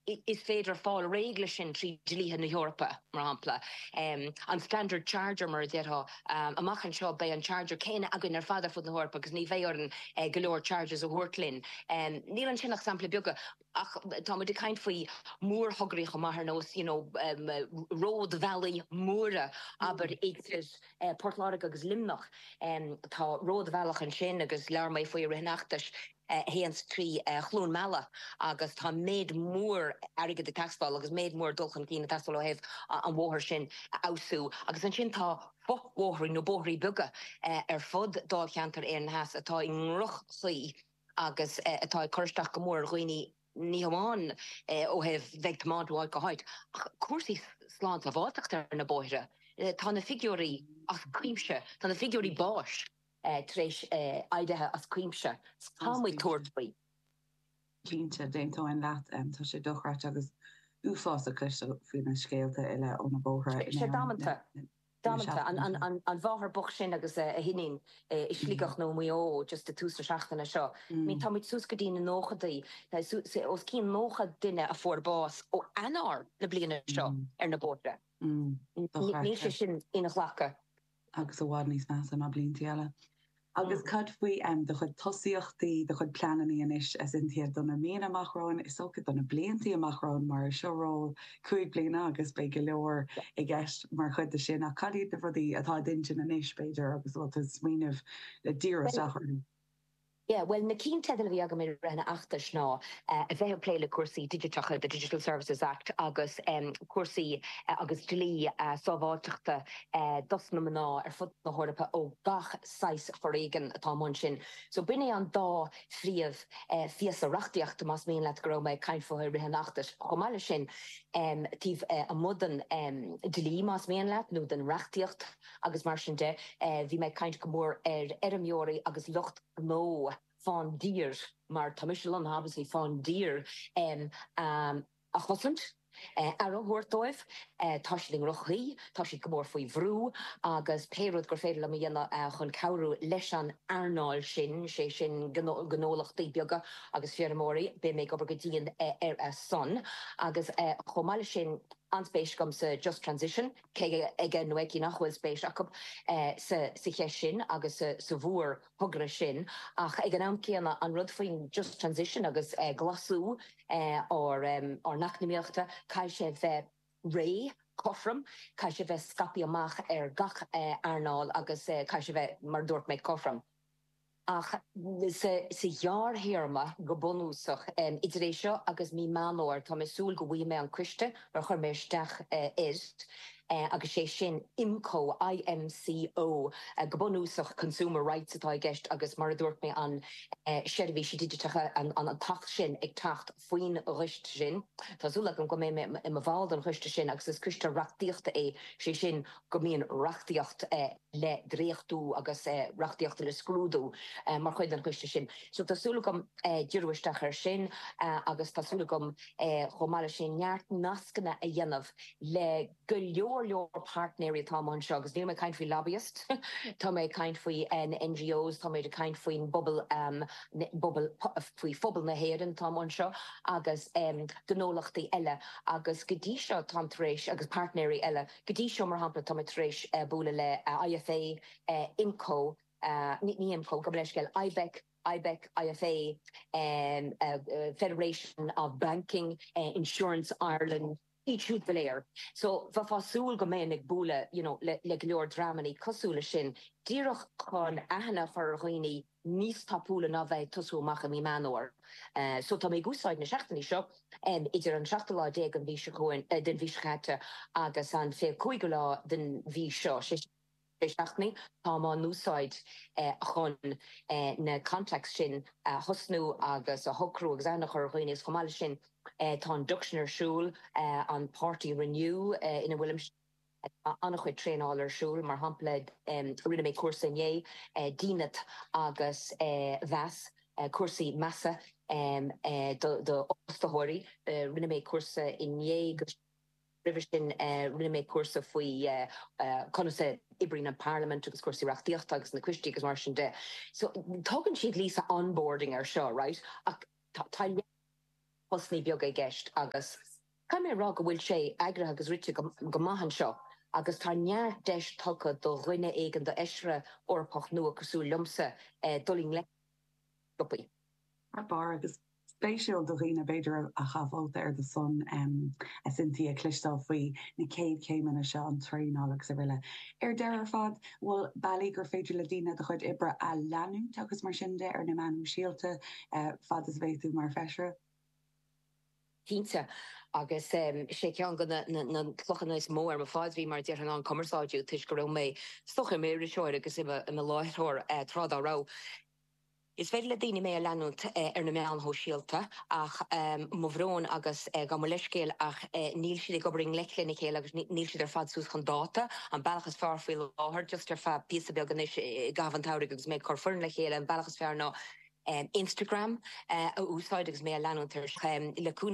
Is féidir fáil réidh leis sin trí dhlíthe na hEorpa, mar shampla, an standard charger, mar a déarfá. Amach anseo, beidh an charger céanna againn ar fad ar fud na hEorpa agus ní bheidh orainn go leor chargers a thabhairt linn. Níl ansin ach samplaí beaga, ach tá muid ag caint faoi mhórthograí chomh maith, ar nós, you know, ródbhealaí móra, abair, idir Port Láirge agus Luimneach. Tá ródbhealach ansin agus labhair mé faoi i rith an fheachtais. a théann trí Chluain Meala agus tá méid mór airgid ag teastáil agus méid mór dul chun cinn ag teastáil ó thaobh an bhóthair sin a fheabhsú. Agus ansin tá fo-bhóithrí nó bóithrí beaga ar fud Dháilcheantar Éireann Theas atá i ndroch-chaoi agus atá ag cur isteach go mór ar dhaoine, ní hamháin ó thaobh bheith ag tiomáint ó áit go háit ach cúrsaí slánsábháilteachta ar na bóithre. Tá na figiúirí as cuimse, tá na figiúirí báis. tar éis éirí as cuimse. Tá muid ag tabhairt faoi. Cinnte, d'aontóinn leat. Tá sé dochreidte agus uafásach ag cloisteáil faoi na scéalta uile ó na bóithre in Éirinn le seachtainí. Damanta. An mháthair bhocht sin agus a hiníon i Sligeach nó i Maigh Eo just i tús na seachtaine seo. Tá muid suas go dtí na nóchaidí. Os cionn 90 duine a fuair bás ó Eanáir na bliana seo ar na bóithre. Níl sé sin inghlactha. agus i bhfad níos measa ná blianta eile. Agus cad faoi do chuid tosaíochtaí, do chuid pleananna anois? Cinnte do na míonna amach romhainn, is dócha do na blianta amach romhainn, mar seo ról cúig bliana agus beidh go leor i gceist mar chuid de sin. Ach caidé na rudaí atá i d'intinn anois, b'fhéidir, agus a bhfuil tú ag smaoineamh le díriú isteach orthu? Yeah, bhuel, na ceannteidil a bhí agam i rith an fheachtais ná a bheith ag plé le cúrsaí digiteacha, the Digital Services Act, agus cúrsaí agus dlí sábháilteachta dos na mná ar fud na hEorpa ó gach saghas foréigean atá amuigh ansin. So b'in é an dá phríomhphíosa reachtaíochta, más mian leat, go raibh mé ag caint fúthu i rith an fheachtais. Chomh maith leis sin, taobh amuigh den dlí, más mian leat, nó den reachtaíocht, agus mar sin de, bhí mé ag caint go mór ar fheirmeoirí agus lucht gnó faoin dtír mar tá mise lonnaithe obviously faoin dtír a chosaint, aire a thabhairt dóibh, tá siad i ndroch-chaoi, tá siad go mór faoi bhrú agus pé rud gur féidir liom a dhéanamh chun cabhrú leis an earnáil sin, sé sin gnólachtaí beaga agus feirmeoirí, beidh mé ag obair go dian ar a son. Agus chomh maith leis sin, an-spéis agam sa Just Transition. Cé aige nó aici nach bhfuil spéis acu sa cheist sin agus sa mhórthogra sin ach ag an am céanna an rud faoin Just Transition agus glasú ár n-eacnamaíocht, caithfidh sé bheith réidh, cothrom, caithfidh sé bheith scaipthe amach ar gach earnáil agus caithfidh sé bheith, mar a dúirt mé, cothrom. Ach sa ghearrthéarma, go bunúsach, idir é seo agus mí Meán Fhómhair, tá mé ag súil go bhfaighidh mé an coiste ar chuir mé isteach air, agus sé sin IMCO, I-M-C-O, go bunúsach Consumer Rights atá i gceist agus, mar a dúirt mé, an seirbhísí digiteacha, an t-acht sin ag teacht faoin gcoiste sin. Tá súil agam go mbeidh mé i mo bhall den choiste sin agus is coiste reachtaíochta é, sé sin go mbíonn reachtaíocht. le dréachtú agus reachtaíocht le scrúdú mar chuid den choiste sin. So tá súil agam díriú isteach air sin agus tá súil agam chomh maith leis sin neart nascanna a dhéanamh le go leor leor páirtnéirí atá amuigh anseo agus níl mé ag caint faoi lobbyists, tá mé ag caint faoi na NGOs, tá mé ag caint faoin bpo, bpobal, faoi phobal na hÉireann atá amuigh anseo agus gnólachtaí eile agus go dtí seo táim tar éis, agus páirtnéirí eile, Go dtí seo, mar shampla, táim tar éis bualadh le IFA, IMCO, ní IMCO, gabh mo leithscéal, IBEC, IBEC, IFA, Federation of Banking, Insurance Ireland, iad siúd go léir. So, beifear ag súil go mbeinn ag bualadh, you know, le go leor dreamanna cosúil leis sin díreach chun aithne a chur ar dhaoine níos tapúla ná bheith ag tosú amach i mí Meán Fhómhair. So tá mé ag úsáid na seachtainí seo, idir an seachtú lá déag den mhí, den mhí seo caite, agus an fiche cúigiú lá den mhí seo, sé, sé seachtaine, táim á n-úsáid chun na contacts sin a thosnú agus a shocrú agus aithne a chur ar dhaoine agus chomh maith le sin, tá induction ar siúl, an páirtí Renew ina bhfuilimse. Tá an-chuid traenáil ar siúl, mar shampla rinne mé cúrsa inné, dínit agus meas, cúrsaí measa d'fhostaitheoirí, rinne mé cúrsa inné agus roimhe sin rinne mé cúrsa faoi conas a oibríonn an parlaimint agus cúrsaí reachtaíochta agus na coistí agus mar sin de. So tugann siad an téarma onboarding air seo, right, ach tá leath postannaí beaga i gceist agus. Caithfidh mé a rá go bhfuil sé eagraithe agus rite go maith anseo agus tá neart deis tugtha do dhuine éigin, d'Fheisire Eorpach nua cosúil liomsa dul i ngleic leis na rópaí. Thar barr, agus spéisiúil do dhaoine b'fhéidir a chaith vóta ar do son, a Cynthia, cloisteáil faoi na céad chéimeanna seo, an traenáil agus araile. Ar deireadh ar fad, bhfuil bealaí gur féidir le daoine do chuid oibre a leanúint agus mar sin de ar na meáin shóisialta fad is a bheidh tú mar Feisire? cinnte. Agus is é ceann de na clochanna is mó ar mo phaidrín, mar a déarfainn, ná an cumarsáidiú, toisc go raibh mé féin i m'iriseoir agus i mo láithreoir tráth dá raibh. Is féidir le daoine mé a leanúint ar na meáin shóisialta, ach mo bhrón agus gabh mo leithscéal, ach níl siad ag obair i ngleic lena chéile agus níl siad ar fad suas chun dáta. An bealach is fearr faoi láthair, just ar feadh píosa beag anois i gcaitheamh an tsamhraidh agus mé ag cur foireann le chéile, an bealach is fearr ná, Instagram a úsáid agus mé a leanúint ar seo le cúnamh.